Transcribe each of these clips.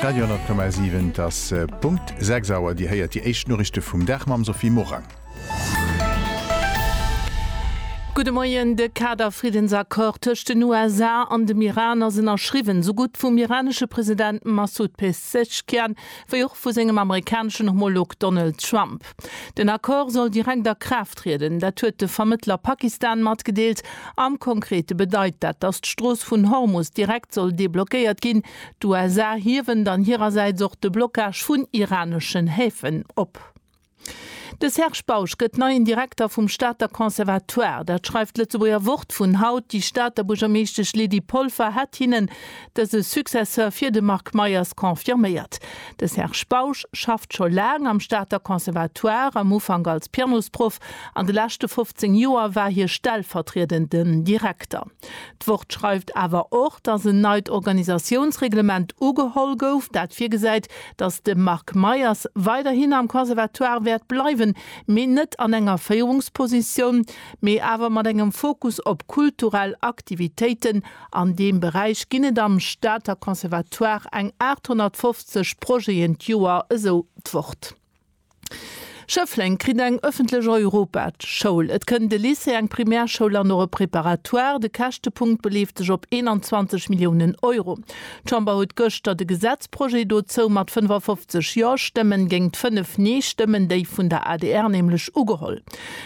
Radio 10,7, Et ass Punkt 6 Auer. Dir héiert déi éischt Noriichte vum Dag mam Sophie Morang. Gudde Moien. De Kader-Friddensaccord tëscht den USA an dem Iran ass ënnerschriwwen, esou gutt vum iranesche President Massoud Pezeshkian wéi och vu sengem amerikaneschen Homolog Donald Trump. Trump. Den Accord soll direkt a Kraaft trieden, dat huet de Vermëttler Pakistan matgedeelt. Am Konkrete bedeit dat, datt d'Strooss vun Hormus direkt soll deblockéiert ginn. D'USA hiewen dann hirersäits och de Blockage vun iraneschen Häfen op. De Serge Bausch gëtt neien Direkter vum Stater Conservatoire. Dat schreift d'Lëtzebuerger Wort vun haut. Déi Stater Buergermeeschtesch Lydie Polfer hätt hinnen dëse Successeur fir de Marc Meyers confirméiert. De Serge Bausch schafft scho laang am Stater Conservatoire, am Ufank als Pianosproff, an de leschte 15 Joer war hie stellvertriedenden Direkter. D'Wort schreift awer och, datt en neit Organisatiounsreglement ugeholl gouf, dat virgesäit, datt de Marc Meyers weiderhin am Conservatoire wäert bleiwen, mee net an enger Féierungspositioun, mee awer mat engem Fokus op kulturell Aktivitéiten An deem Beräich ginn et am Stater Conservatoire eng 850 Projeten d'Joer, esou d'Wort. Schëffleng kritt eng ëffentlech Europaschoul, et kënnt e Lycée, eng Primärschoul an och e Préparatoire. De Käschtepunkt beleeft sech op 21 Milliounen Euro. D'Chamber huet gëschter de Gesetzprojet dozou mat 55 Jo-Stëmmen géingt 5 Nee-Stëmmen, déi vun der adr nämlech, ugeholl.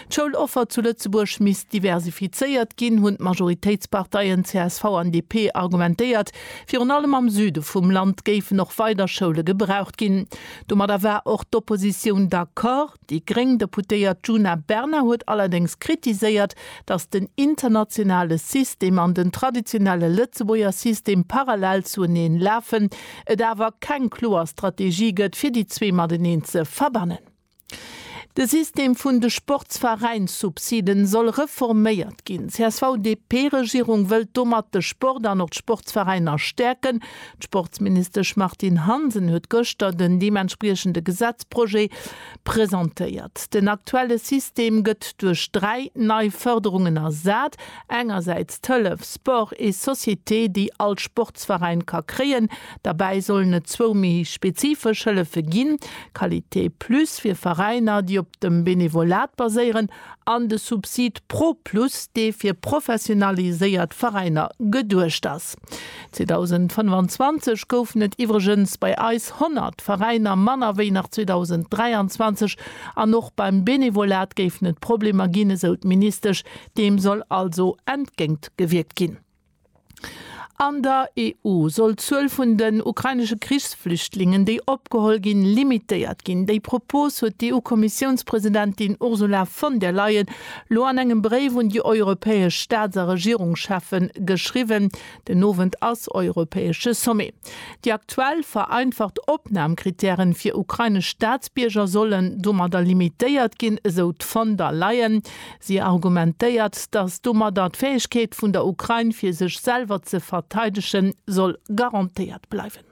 D'Schouloffer zu Lëtzebuerg misst diversifizéiert ginn, hunn d'Majoritéitsparteien csv an DP argumentéiert. Virun allem am Süde vum Land géifen och weider Schoule gebraucht ginn. Domadder war och d'Oppositioun d'accord. Déi gréng Deputéiert Djuna Bernard huet allerdéngs kritiséiert, datt den internationale System an den traditionelle Lëtzebuerger System parallel zueneen lafen, et awer keng kloer Strategie gëtt, fir déi zwee mateneen ze verbannen. De System vun de Sportsveräinssubsiden soll reforméiert ginn. D'CSV-DP-Regierung wëllt domat de Sport an och d'Sportsveräiner stäerken. D'Sportsministesch Martine Hansen huet gëschter den deementspriechende Gesetzprojet presentéiert. Den aktuelle System gëtt duerch dräi nei Fërderungen ersat, engersäits d'Hëllef Sport et Société, déi all Sportsveräin ka kréien, Derbäi sollen et zwou méi spezifesch Hëllefe ginn, Qualité Plus fir Veräiner, déi op dem Benevolat baséieren, an de Subsid Pro Plus, dee fir professionaliséiert Veräiner geduecht ass. 2025 goufen et iwwregens bei eis 100 Veräiner manner wéi nach 2023. An och beim Benevolat géifen et Problemer ginn, esou d'Ministesch. Deem soll also entgéintgewierkt ginn. An der EU soll d'Zuel vun den ukrainesche Krichsflüchtlingen, déi opgeholl ginn, limitéiert ginn. Déi Propos huet d'EU-Kommissiounspresidentin Ursula von der Leyen elo an engem Bréif un déi europäesch Staats a Regierungscheffe geschriwwen. Den Owend ass europäesche Sommet. Déi aktuell vereinfacht Opnamkrittäre fir ukrainesch Staatsbierger sollen domadder limitéiert ginn, esou d'Von der Leyen. Si argumentéiert, datt domadder d'Fäegkeet vun der Ukrain, fir sech selwer ze verteidegen, soll garantéiert bleiwen.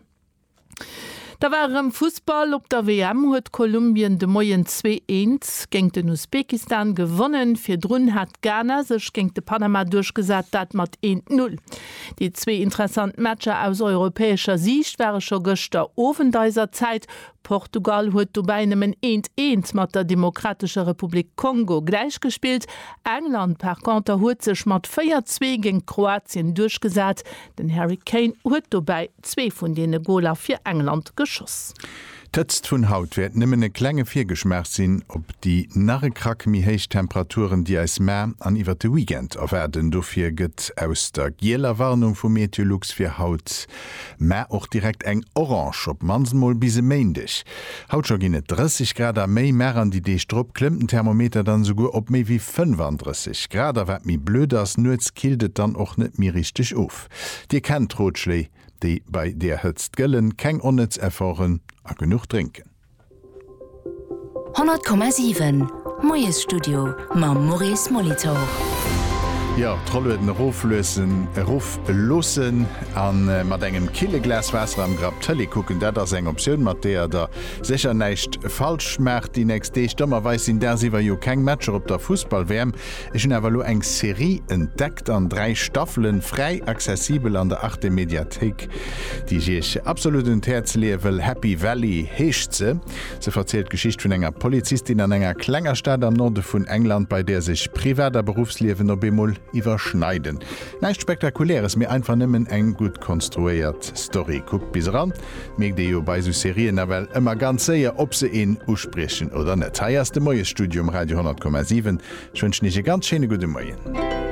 Da war erëm Fussball. Op der WM huet Kolumbien de Moien zwee eens géint den Usbekistan gewonnen. Virdrun hat Ghana sech géint de Panama duerchgesat, dat mat eent Null. Déi zwee interessant Matcher aus europäescher Siicht ware scho gëschter Owend eiser Zäit. Portugal huet dobäi nëmmen eent eent mat der Demokratescher Republik Kongo gläichgespillt. England par Konter huet sech mat 4, 2 géint Kroatien duerchgesat. Den Harry Kane huet dobäi zwee vun deene Goler fir England geschoss. D'Hëtzt vun haut wäert nëmmen e klenge Virgeschmaach sinn op déi nach e Krack méi héich Temperaturen, déi eis mar an iwwert de Weekend erwaarden. Dofir gëtt aus der gieler Warnung vu Meteolux fir haut Mä och direkt eng Orange, op d'mannst mol bis e Méindeg. Haut scho ginn et 30 Grad a méi, mä ran déi Deeg drop klëmmt den Thermometer dann esouguer op méi wéi 35 Grad. A wat méi blöd ass, nuets killt et dann och net méi richteg of. Dir kennt d'Rotschléi, déi bei där Hëtzt gëllen, keng onnëtz Efforten a genuch drénken. 100,7 Moiesstudio mam Maurice Molitor. Jo, d'Rollueden erofluessen, erofloossen a mat engem kille Glas Waasser am Grapp Tëlee kucken, dat ass eng Optioun, mat deeër Der sécher näischt falsch maacht déi nächst Deeg. Dommerweis sinn dagsiwwer jo keng Matcher op der Fussball-WM. Ech hunn awer elo eng Serie entdeckt an 3 Staffelen, fräi accessibel an der Arte Mediathéik, déi ech iech absolut un d'Häerz leeë wëll, Happy Valley heescht se. Se verzielt d'Geschicht vun enger Polizistin an enger klenger Stad am Norde vun England, bei där sech Privat a Beruffsliewen op eemol iwwerschneiden. Näischt Spektakuläres, mee einfach nëmmen eng gutt konstruéiert Story. Kuckt bis eran, Mierkt ee jo bei esou Serien nawell ëmmer ganz séier, ob se een uspriechen oder net. Hei ass de Moiesstudio um Radio 10,7. Ech wënschen Iech e ganz schéine gudde Moien.